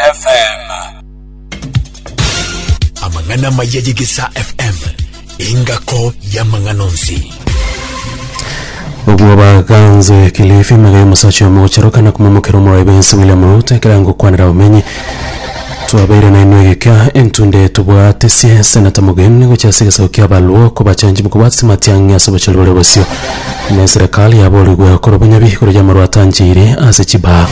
FM. Amang'ana amaya y'Egesaa FM engako y'amang'ana onsi. Obwo baganze Kilifi magaye omosacha omochero kana kumomokera omorwayi bensi William Ruto ekera ngokwanera abamenyi twabeire nainwe egeka entunde tobwate sie senata mogeni gochia ase egesaku kia abaluo kobachanchi mokobwate simatiang'i ase obochori bore bosio ne eserekari yaborigwe korwa bonyabi korwa yamarwa atancheire ase chibaa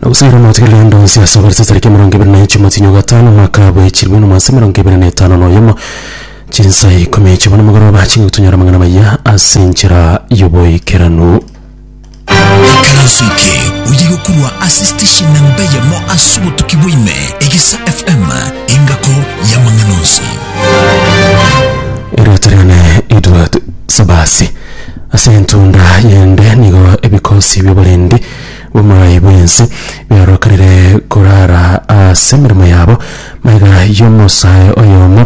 Nabosire omwete kera riondo nse ase obere ase tariki emerongo ebere na inche omwezi nywa gatano omwaka bwechirwe na omwase emerongo ebere na etano na oyomo chinsa ikomi chibona omogoroba chingotonyora amang'ana maya ase enchera y'oboikeranu. Ekeroso eke oye gokorwa ase station na mbe yamo ase obotuki bwaime egisa FM engako y'amang'ana onsi. Erioto riane Edward Sabasi. Ase entunda yende nigo ebikosi bi'oborendi bw'omorai bw'ense biarokerire korara ase emeremo yabo maiga y'omosae oyomo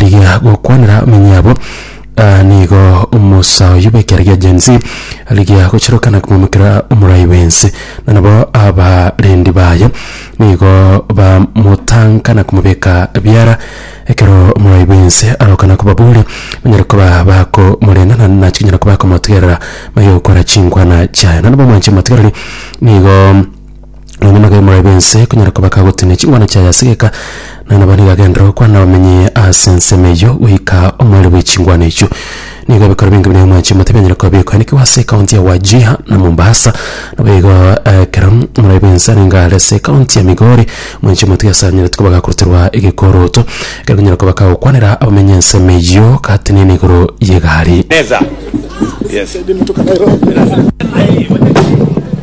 rigia gokwanera amenyo yabo, aa, nigo omosa oyio bw'ekiara gia Gen Z rigia gochirokana komomokera Omorai bw'ense, na nabo abarendi baye nigo bamotanka na komobeka biara. Ekero Omorai bw'ense arokana kobaboria, banyare koba bakomoreng'ana na chinyara koba bakomotegerera, baye gokora chinkwana chiaye. Nonye nabamwanche motigereri, nigo. Nonya magega maye b'ense konyara koba kagotinia chingwana chiaye ase geka, na nabo nigo agenderera gokwana nabamenye ase ensemo eyio goika omoerio bwe chingwana echio. Nigo ebikoro binge buna Emwachi Omote bianyare koba bikoenikigwa ase ekaunti ya Wajir na Mombasa. Nabo igo ekero omorai bw'ense arenge are ase ekaunti ya Migori, Mwanchi Omote ase anyarete koba gakoruterwa egekoroto ekero konyara koba kagokwanera abamenye ensemo eyio gatenena igoro y'egari.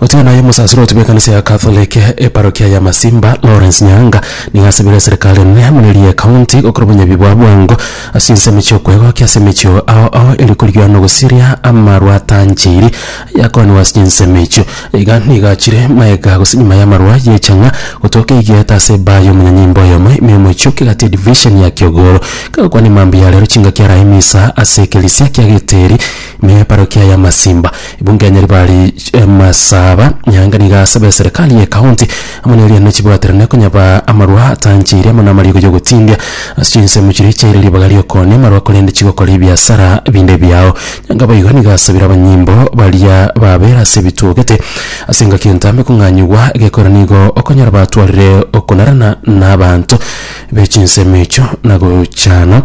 Otiga naye omosaseri otebia ekanisa ya Catholic eparokia ya Masimba Lawrence Nyaanga nigo asabire eserekari enene muna eria ekaunti gokora obonyabi bwa bwango ase ensemo chi'okwegokia ase emechio ao ao eri korigia na ogosiria amarwa atancheiri ayakooraniwa ase chinsemo echio. Iga nigo achire maega gose nyuma y'amarwa y'echang'a gotoka egieta ase ebaa y'omonyanyimbo oyomo ime y'omochie o Kegati edivisheni ya Kiogoro. Kagokwana mambia ya rero chingaki arae misa ase ekerisia kia Geteri, Mia eparokia ya Masimba, ebunge ya Nyaribari Masaba, Nyaanga nigo asaba eserikari ye county amo ne erianera chibwaterane konyaba amarwa atancheire amo namarigo yogotindia ase chinsemo chiria chiaire ribaga ri'okoonia amarwa korende chigokora ebiasara binde biao. Nyaanga boigo nigo asabire abanyimbo baria babera ase ebitwogete ase engaki entambe kong'anyigwa egekogera nigo okonyora batwarire okonarana nabaanto be chinsemo echio na gochana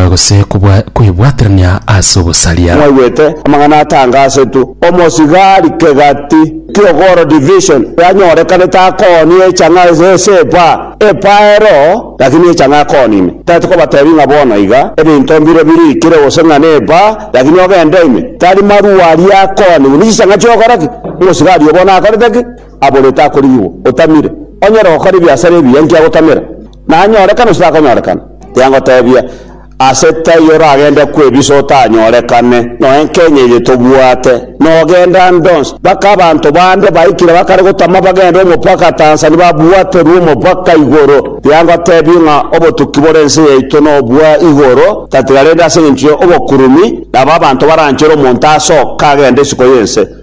gose kobwa- kwebwaterania ase ogosaria. Mwaigwete amang'ana atangasetwe omosigari kegati ki'ogoro division yanyorekanete akooni echang'a ase esepa epaero lakini echang'a akoonine tati kobatebi ng'a bono iga ebinto mbire birikire gose ng'a nepa lakini ogende ime tari marua aria akooni buna chichang'a chi'ogoro ki omosigari oyo bono akorete ki aborete akorigigwa otamire onyare gokora ebiasara ebiya nki agotamera Nanyorekane onsi takonyorekana, tiga ngoteebia, ase taiyo oragende kw'ebiso otanyorekane, noe Kenya eye tobwate, nogenda nde onsi. Baka abanto bande baikire bakare gotama bagende omopaka Tanzania babwaterwe omopaka igoro. Tiga ngoteebie ng'a obotuki bore ense yaito nobwa igoro tatiga rende ase engencho y'obokurumi, nabo abanto baranchere omonto asoka agende isiko y'ense.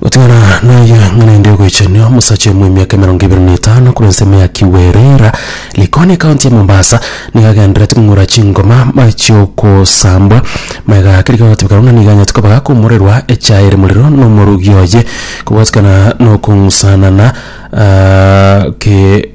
Gotigana naye ng'a naende ogoichania omosacha oyo bw'emiaka emerongo ebere na etano korwa ensemo ya Kiwirira, Likoni, ekaunti ya Mombasa, nigo agendererete kong'ura chingoma mari chi'ogosambwa magega ake riga gotebeka buna nigo aganyete koba gakoumorerwa echaye ere morero na omorogi oye, kobwatikana na okong'usanana ke.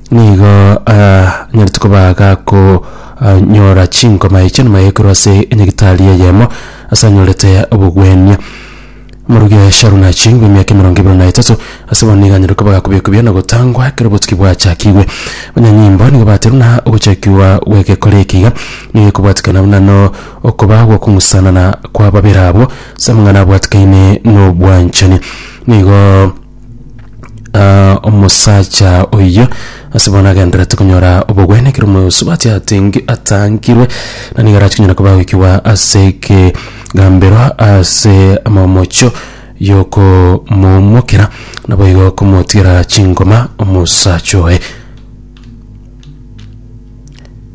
Nigo anyarete koba gakonyora chinkoma echi enuma yaekerwa ase enyagitari eyemo ase anyorete obogwenia. Morugi oye Sharon achingwe emiaka emerongo ebere na etato, ase bono nigo anyare koba gakobekwa ebiya na gotangwa ekero obotuki bwachakigwe. Abanyanyimbo nigo baterwa na ogochakigwa gw'egekore eke iga nigo ekobwatekana buna no okoba gw'okong'usanana kw'ababera abwo ase amang'ana abwatekaine nobwanchani. Nigo. Ah, omosacha oyio ase bono agenderete konyora obogwene ekero omosubati atengi atangirwe na nigo arachi konyara koba goikigwa ase ekegambero ase amamocho yokomomokera naboigo komotigera chingoma omosacha oye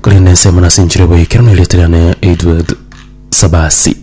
korende ensemo nasinchire boikeranu erieta riane Edward Sabasi.